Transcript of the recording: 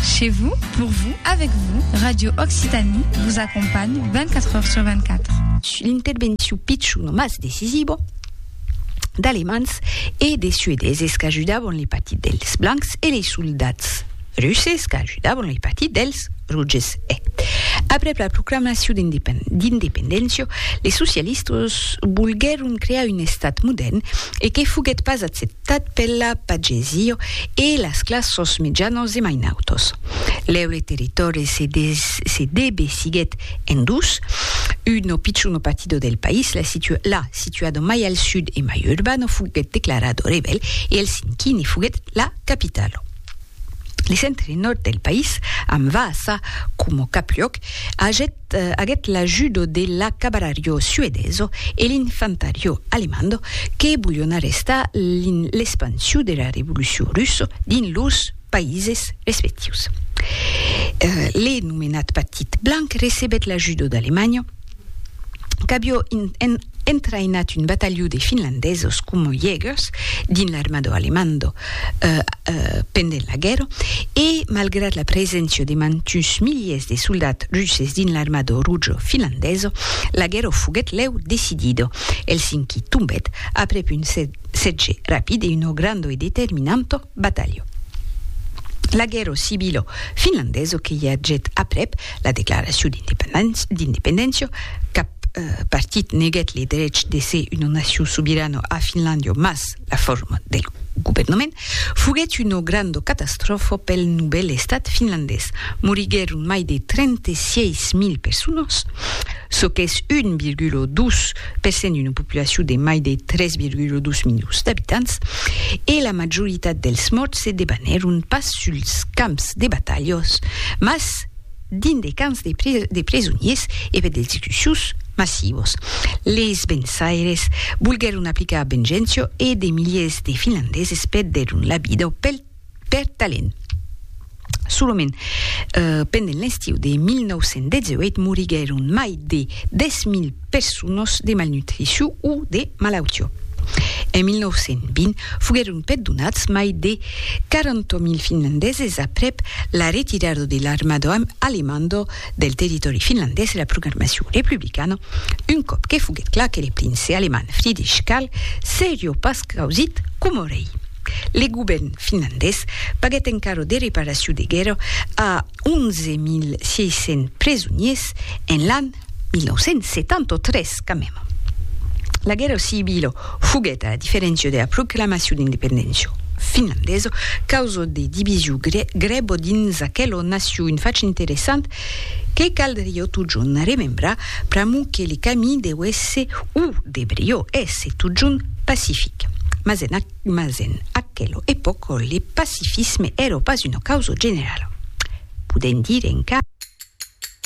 Chez vous, pour vous, avec vous, Radio Occitanie vous accompagne 24 heures sur 24. L'intervencion pichon o mas decisiva d'Alemands e de Suedeses qu'ajudavan le partit dels Blancs e les soldats Russes qu'ajudavan le partit dels Rouges e, aprèp la proclamacion d'independéncia, les socialistas volguèron crear un estat modèrn e que foguèt pas acceptat. Tad pela pagesió e las classos mitjanos e mainautos. Lèu le territòri se se debe siguet en dus, uno picciu no patido del país, la situ la situado mai al sud e mai urbano fuguet declarado rebèl e el cinquini fuguet la capitalo. Le centre nòrd del país, amb Vaasa coma cap luòc, agèt aguèt l'ajudo de la cabarariò suedeso e l'infantariò alemando que volion arrestar l'espansion de la revolucion russa dins lors païses respectius. Le nomenat Partit Blanc recebèt l'ajudo d'Alemanha qu'avió entraïnat un batalhon de finlandesos coma Jägers dins l'armada alemando pendent la guèrra e malgrat la preséncia de mantuns miliers de soldats russes dins l'armada roja finlandesa, la guèrra foguèt lèu decidida. Helsinki tombèt aprèp un sètge rapid e una granda e determinanta batalha. La guèrra civila finlandesa que i agèt aprèp la declaracion d'independéncia, cap partit neguèt le drech de ser una nacion sobirana a Finlàndia, mas, La forma del governament foguèt una granda catastròfa pel novèl estat finlandés. Moriguèron mai de 36 mil personas, çò qu'es 1,2 per cent d'una populacion de mai de 3,2 milions d'abitants, e la majoritat dels mòrts se debanèron pas suls camps de batalhas, mas dins de camps de presoniers e per d'execucions massivas. Leis vençaires volguèron aplicar vengencia e de miliers de finlandeses perdèron la vida pel per talent. Solament pendent l'estiu de 1918 moriguèron mai de 10.000 personas de malnutricion o de malautiá. En 1920, foguèron perdonats mai de 40.000 finlandeses aprèp la retirada de l'armada alemanda del territòri finlandés e la proclamacion republicana, un còp que foguèt clar que le prince alemand Friedrich Karl seriá pas causit coma rei. Le govèrn finlandés paguèt encara de reparacion de guèrra a 11.600 presoniers en l'an 1973, quand même. La guèrra civila foguèt, a la diferéncia de la proclamacion d'independéncia finlandesa, causa de division grèva dins aquela nacion, un fach interessant que caldriá totjorn remembrar pr'amor que le camí deu èsser, o debriá èsser totjorn pacific. Mas en, mas en aquela epòca le pacifisme èra pas una causa generala. Podèm dire encara.